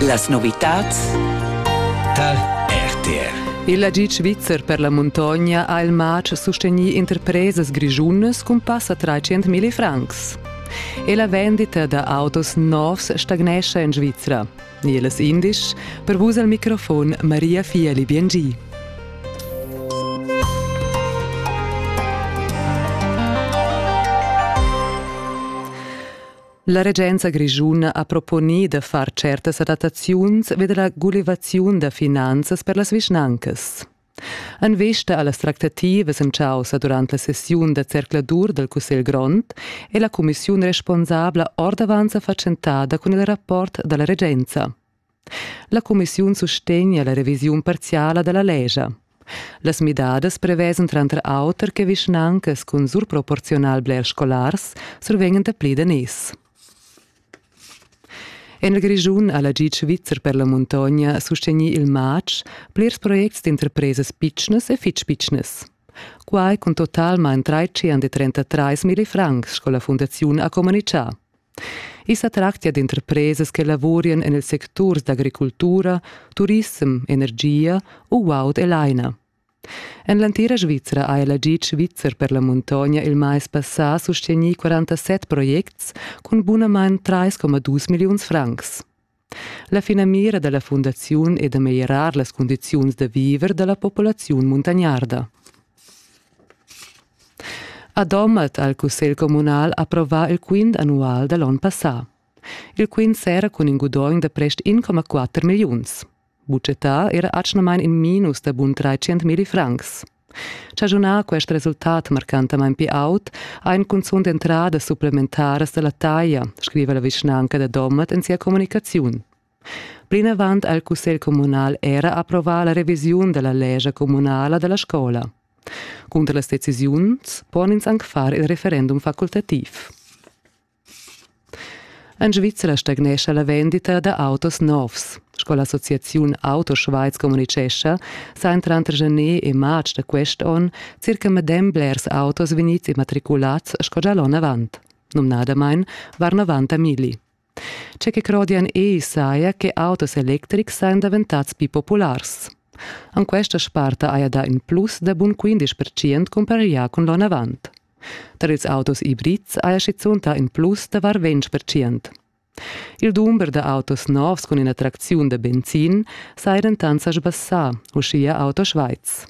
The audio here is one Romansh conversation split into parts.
Las novitads tal RTR il agid svizzer per la muntogna ha il matg sustegnì interpresas grischunas cun passa 300.000 francs. E la vendita da autos novs stagnescha en Svizra. Nieles indisch, per vus al microfon Maria Fiali Biengi. La regenza grischuna ha proponì da far certas adattaziuns vi da la gulivaziun da finanzas per las vischnancas. En vista a las tractativas en chaussa durant la sessiun da zercladur dal Cussegl grond è la cumissiun responsabla ordavant sa fatschentada cun il rapport da la regenza. La cumissiun sustegna la revisiun parziala dalla lescha. Las midadas prevesen tranter auter che vischnancas cun surproporziunal blers scolars survengan dapli daners. En il Grischun ha la GIT svizzer per la muntogna sustegnì il matg plirs projects d'interpresas pitschnas e fitg pitschnas. Quai cun totalmain 333 francs, sco la fundaziun ha communitgà. I sa tractia d'interpresas che lavurien en ils secturs d'agricultura, turissem, energia u guaud e laina. En l'entira Svizra ha ella gitg svizzer per la muntogna il mais passà sustegnì 47 projects cun bunamain 3,2 milliuns francs. La finamira dalla fundaziun è da meglierar las cundiziuns da viver dalla populaziun muntagnarda. A Domat ha il cussegl communal approvà il quint annual da l'onn passà. Il quint sera cun in gudogn da prest 1,4 milliuns. Bucetà era atgnamain in minus da bun 300 milli francs. Chagiunar quest resultat marcantamain pli aut ha in cunzunt entradas supplementaras da la taglia, scriva la vischnanca da Domat en sia communicaziun. Plinavant ha il cussegl communal era approvà la revisiun da la lescha communala da la scola. Cunter las decisiuns pon ins anc far il referendum facultativ. En Svizra stagnescha la vendita da autos novs. Sco l'associaziun Auto Schweiz communitgescha, sajan tranter gener e marz da quest onn circa medem blers autos vegnids immatriculads sco gia l'onn avant. Numnadamain var 90 mili. Tge che crodian ei saja che autos electrics sajan daventads più populars. An questa sparta haja dà in plus da bun 15% cumparià cun l'onn avant. Tar ils autos ibrids haja schizunt dà in plus da var ventg percent. Il dumber da autos novs cun ina tracziun da benzin saja dentant sa sbassà, uschia Auto Schweiz.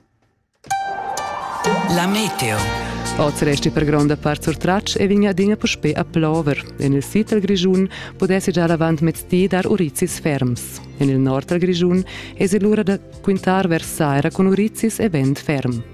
La meteo. Oz resti per gronda part surtratg e vegn adina puspè a plover. En il sid dal Grischun pudessi già avant mezdi dar urizis ferms. En il nord dal Grischun èsi lura da quintar vers saira cun urizis e vent ferm.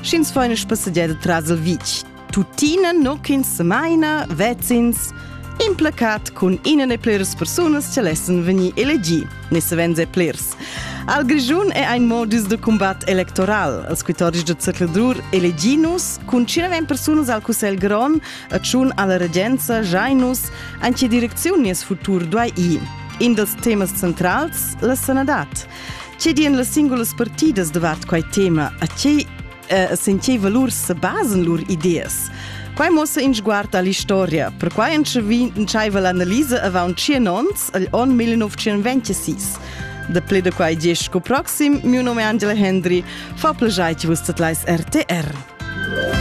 Sch'ins fa ina spassegiada tras il vitg, tuttina nu ch'ins semaina vezins implacat cun ina e pliras persunas che lessan vegnir elegì, ne savens e plirs. Al Grischun è ein modus de combat electoral. Els quitoris de zercladur eleginus cun cinevem persunas al Cussegl Grond a tschun alla regenza jainus an che direcziun nies futur duai i. In dels temas centrals, la sanadad. Che di en las singulas partidas davat quai tema? A che eh, senteva lur se basen lur ideas? Quai mossa in sguard all'historia. Perquai entscheiva l'analisa avant 100 ons agl on 1926. Da ple da quai dies sco proxim, mio nome è Angela Hendry, fa plagiai vus dat leis RTR.